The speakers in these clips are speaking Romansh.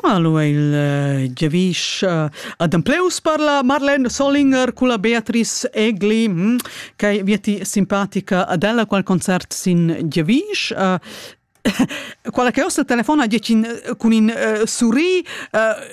Hallo, il giavisch adempleuss per la Marlene Solinger culla Beatrice Egli, hm, che vieti simpatica ad ella qual concert sin giavisch. Quella che ossa telefona giacin cun in surri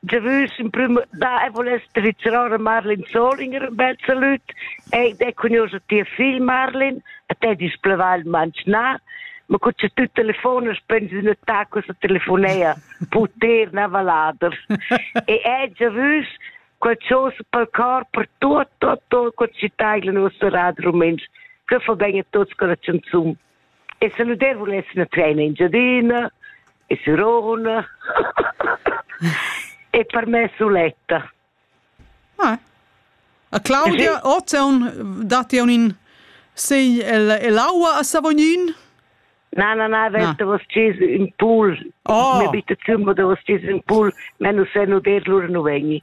de vus in prim da e voless tradizional Marlin Solinger un bel salut e de cugnosa tia figl Marlin a te displeva il manchna ma cu c'è tu telefona spendi una tacca su telefonea poter na valader e è già vus qualcosa per cor per tutto tutto quel città il nostro radio rumens che fa bene a tutti con la canzone E saludar vuless una treina Engiadina e Sirona e per me suletta. Ah. A Claudia, ozeun datti un in sei el, el aua a Savognin? Na, na, na, vent da vos cis in pool. Oh. Mi bitte zimmer da vos cis in pool, men nu se nu der lur nu vegni.